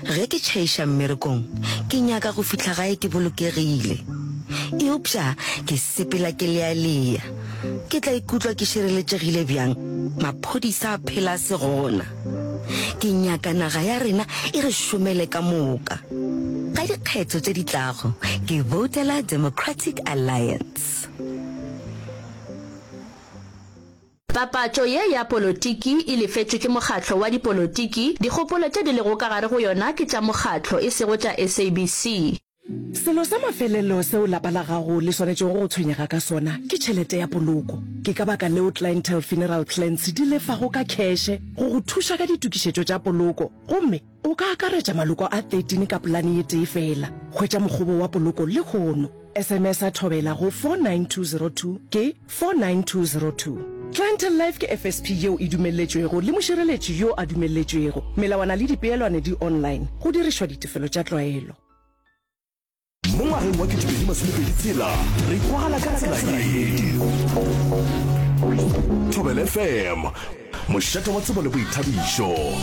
Ge ke tšhaiša mmerekong, ke nyaka go fihla gae ke bolokegile. Eupša ke sepela ke lealea. Ke tla ikutlwa ke šireletšegile bjang maphodisa a phela a se gona? Ke nyaka naga ya rena e re šomele ka moka. Ka dikgetho tše di tlago, ke voutela Democratic Alliance. Papatšo ye ya polotiki e lefetšwe ke mokgatlo wa dipolotiki, dikgopolo tše di lego ka gare go yona ke tša mokgatlo e sego tša SABC. Selo sa mafelelo seo lapa la gago le swanetšego go tshwenyega ka sona ke tšhelete ya poloko. Ke ka baka leo Clientele Funeral Plans di lefago ka kheshe go go thuša ka ditokišetšo tša poloko gomme, O ka akaretša maloko a 13 ka polane ye tee feela. Hwetša mokgobo wa poloko lehono. SMS a thobela go 49202 ke 49202. Clientele Life ke FSP yeo e dumelletšwego le mošireletši yo a dumelletšwego. Melawana le dipeelwane di online, go dirišwa ditefelo tša tlwaelo. Mo ngwageng wa 2020 tshela re kwala ka tsela ye. Thobela FM, mošate wa tsebo le boithabišo.